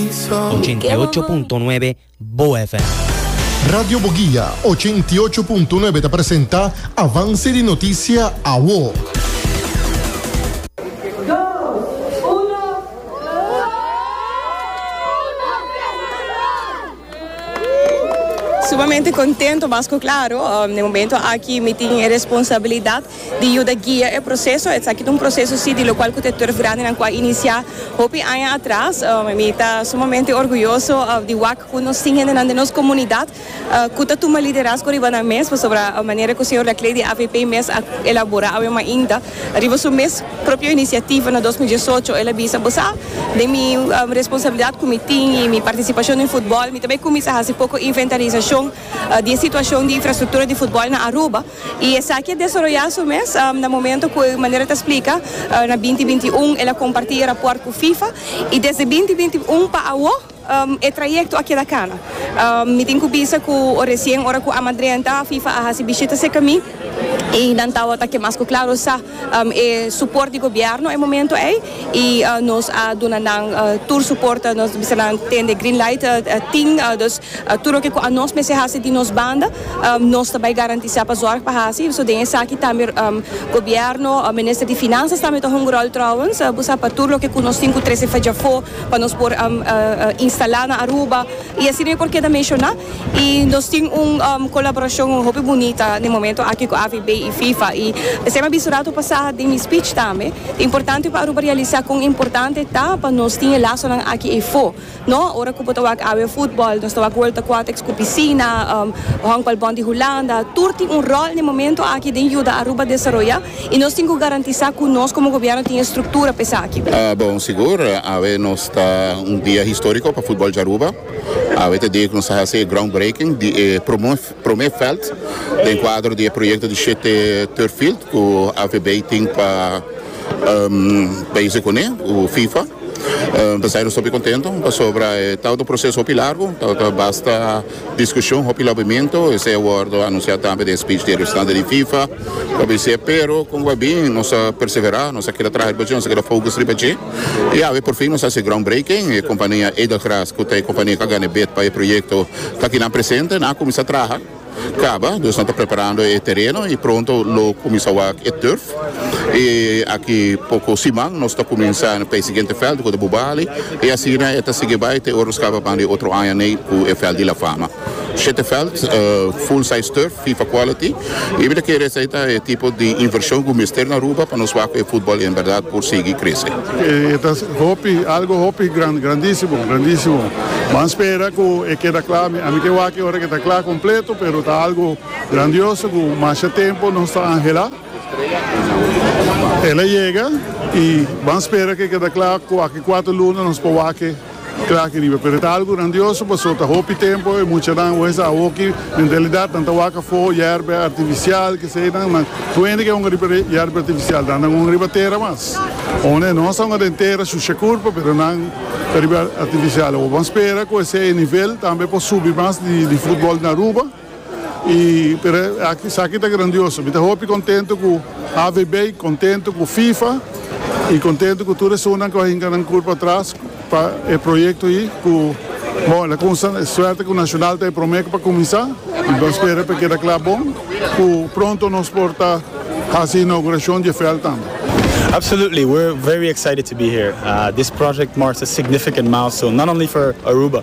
88.9 Bo FM. Radio Boguia, ochenta i ocho punto nuebe ta presenta Avance di Noticia Awo. Sumamente contento mas cu claro, den momento aki mi tin e responsabilidad di yuda guia e proseso. Esaki ta un proseso si di lokual ku te turf grandenan ku a inisiá hopi aña atras. Mi ta sumamente orguyoso di wak ku nos tin hendenan den nos komunidat ku ta tuma liderazgo riba nan mes, pasobra manera ku señor Lacley di avp mes a elaborá awe mainta riba su mes propio inisiativa na dos mil diesocho. El a bisa, Bo sa, den mi responsabilidat ku mi tin i mi partisipashon den futbòl, mi ta bai kuminsá hasi poko inventarisashon di e situashon di infrastruktura di futbòl na Aruba. I esaki a desaroyá su mes na momento ku e manera ta splika na binti binti i un el a kompartí e rapòrt ku Fifa i desde binti binti i un pa awo e trayekto a keda kana. Mi tin ku bisa ku resien ora ku Amadrenta Fifa a hasi bishita serka mi i nan tabata ke mas ku klaro sa e suport di gobierno e momento ei y nos a duna nan tur suport nos bisa nan tende green light tin dus tur loke cu anos mester haci di nos banda nos ta bay garantisa pa zorg pa haci so den esaki tambe gobierno minister di finanzas tambe ta hunga rol trouwens bo sa pa tur loke cu nos tin cu trece fedjafo pa nos por instala na Aruba. I asina yo por keda menshoná. I nos tin un kolaborashon hopi bunita den e momentu aki ku AVB i Fifa. I p'esei mi a bisa ratu pasá den mi spich tambe, ta importante pa Aruba realisá kon importante ta pa nos tin e lasonan aki efo. No, ora ku bo ta wak awe futbòl, nos ta wak World Aquatics ku pisina, Honkbalbond di Hulanda, tur tin un ròl den e momentu aki den yuda Aruba desaroyá. I nos tin ku garantisá ku nos komo gobièrnu tin e struktura pa esaki. Bon, sigur, awe nos ta un dia históriko pa futbòl di Aruba. Awe ta dia ku nos ta hasi e groundbreaking di e promé vèlt den kuadro di e proyekto di shete turf field ku AVB tin pa bezi kuné ku fifa. P'esei nos ta hopi kontentu pasobra e ta un proseso hopi largu, ta basta. Discusion hopi lobimentu esei a wordo anuncia tambe den speech di e representante di Fifa lo bis'e pero con guy bin nos a persevera nos a keda traha riba dje nos a keda focus riba dje y awe por fin nos a haci e groundbreaking e compania Edelgras cu ta e compania cu a gana e bid pa e proyecto ta aki nan presente nan a cuminsa traha caba dus nan ta preparando e tereno y pronto lo cuminsa wak e turf y aki poco siman nos ta cuminsa p'e siguiente veld cu ta Bubali. I asina e ta sigui bai te ora skaba pan di otro aña nei ku e vèlt di La Fama. Shete vèlt, full size turf, Fifa quality. I mi ta kere esei ta e tipo di invershon ku mester na Aruba pa nos wak ku e futbòl en bèrdat por sigui krese. E ta hopi, algu hopi gran, grandísimo, grandísimo. Ban spera ku e keda kla. Ami, ami ke wak e ora ku e ta kla kompleto, pero ta algu grandioso ku masha tempu nos ta anhelá. El a yega y ban spera ke keda kla cu aki cuater luna nos por wak-e kla aki riba. Pero e ta algo grandioso paso ta hopi tempo e muchanan wes a hoki mentalidad nan ta wak afo yerbe artificial kesedan nan kuende ke honga riba yerbe artificial dan nan honga riba tera mas o ne nos ta honga den tera shusha curpa pero nan ta riba artificial awor ban spera cu esey nivel tambe por subi mas di football na Aruba. Y pero esaki ta grandioso. Mi ta hopi contento cu AVB, contento cu FIFA y contento cu tur esun nan cu a hinca nan cur patras pa e proyecto ayi cu bon el a cunsha e suerte cu Nacional ta e prome cu pa cuminsa y bo spera cu e keda cla bon cu pronto nos por ta haci e inauguracion dje veld tambe. Absolutely, we're very excited to be here. This project marks a significant milestone, not only for Aruba,